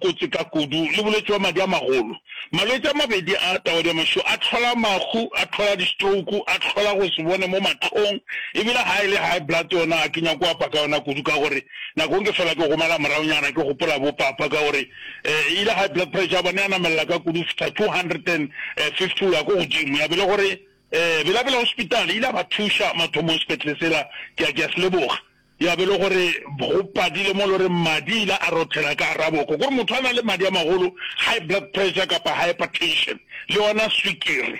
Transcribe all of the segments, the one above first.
Kotsi ka kudu le bolwetši bwa madi a magolo. Malwetši a mabedi a, taodiamašo, a hlola mahu, a hlola distrouku, a hlola go se bone mo mahlong, e bile ga e le high blood yona ga ke nyake go apa ka yona kudu ka gore nako nke fela ke gomela moraonyana ke gopola bo papa ka gore e ile high blood pressure ya bona ya namelela ka kudu go fihla 250 go ya ko godimo ya be le gore Bela-Bela Hospital e ile ya ba thuša mathomong sepetlele sela ke a ke a se leboga. Ya be e le gore go padile mo e le gore madi a ile a rothela ka gare ga boko. Kore motho a na le madi a magolo, high blood pressure kapa hypertension, le yona swikiri.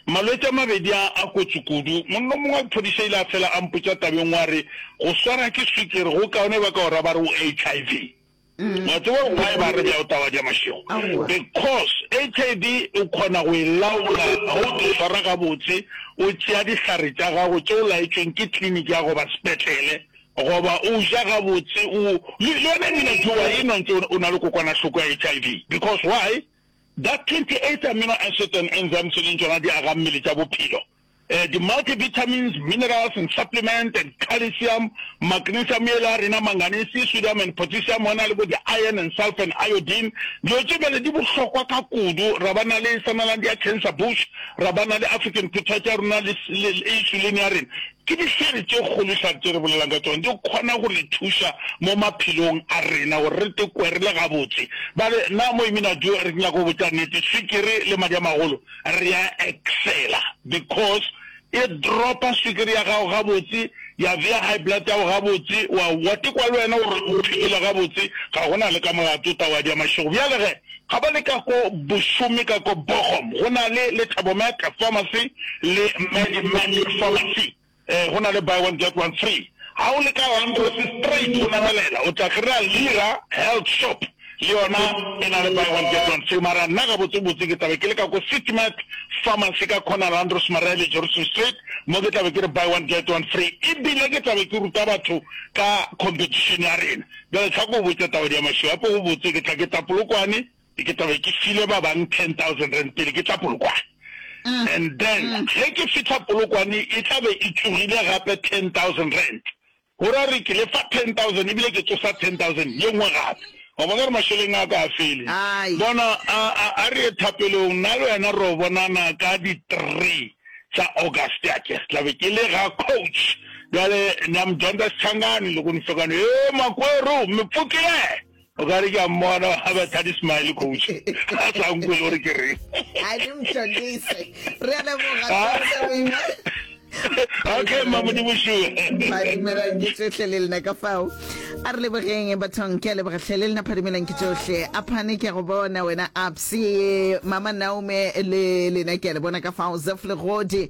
Malwetši a mabedi a a kotsi kudu. Monna o mongwe wa phodiša a ile a fela a mpotša tabeng wa re, Go swarwa ke swikiri go kaone ba ka o ra ba re o HIV. Wa tseba why ba re bjao taba tša mašego? Because HIV o kgona go e laola ge o di swara gabotse, o tšea dihlare tša gago tše o laetšweng ke clinic ya goba sepetlele, goba o ja gabotse, o, le yona ebile ke wa enwa ntse o na le kokwanahloko ya HIV. Because why? That 28 amino acid and enzymes e leng tšona diagammele tša bophelo Di multivitamins, minerals and supplement and calcium, magnesium yela ya rena, manganese, sodium and potassium, go na le bo di iron and sulfur and iodine. Dilo tše bjale di bohlokwa ka kudu. Ra ba na le sanalang di ya cancer bush, ra ba na le African potato ya rona le insulin ya rena. Ke dihlare tše kgolo dihlare tše re bolelang ka tšona, di kgona go re thuša mo maphelong a rena gore re tle kwe re le gabotse. Bale na mo Immunaduo re nyaka go botša nnete, swikiri le madi a magolo re a excela because e dropa swikiri ya gago gabotse, ya bea high blood ya go gabotse, wa wa tekwa le wena gore o phikile gabotse, ga go na le ka molato o tla wa dia mašego. Bjale ge ga ba le ka ko Bošome ka ko Bochum go na le le Thabo Mac Pharmacy le Medimax Pharmacy. Ee, go na le buy one get one free ga o le ka Langrose straight o namelela o tla kry-a Lira Health Shop le yona e na le buy one get one free mara nna gabotsebotse ke tlabe ke le ka ko City-Mart Pharmacy ka corner Langrose Maria le Johnson Street mo ke tlabe ke re buy one get one free e bile ke tlabe ke ruta batho ka competition ya rena. Bjale tlhako o botše Tabadiamašilo gape go botse ke tla ke Tapolokwane. Ke tla be ke file ba bang ten thousand rand pele ke tla Polokwane. And then ge ke fihla Polokwane e tla be e tsogile gape ten thousand rand. Go ra re ke le fa ten thousand ebile ke tsosa ten thousand ye nngwe gape. Wa bona gore mašeleng a ka a fele. Bona, a, a, a re ye thapelong, nna le wena re yo bonana ka di three tsa August, a ke re tla be ke le ga Coach. Bjale, Namdonda Schangani, Lekgonisokane, Hee, Makweru, Mmepfokile! O ka re ke a mmona a be thadi smile coach a sa nkwe le gore ke reng a le mtondise re a leboga okay mma modimo sure ba dumelang ke tsohle le lena ka fao a re lebogeng bathong ke a leboga tlhe le lena phadimelang ke tsohle a phane ke a go bona wena abse mama naume le lena ke a le bona ka fao zef legodi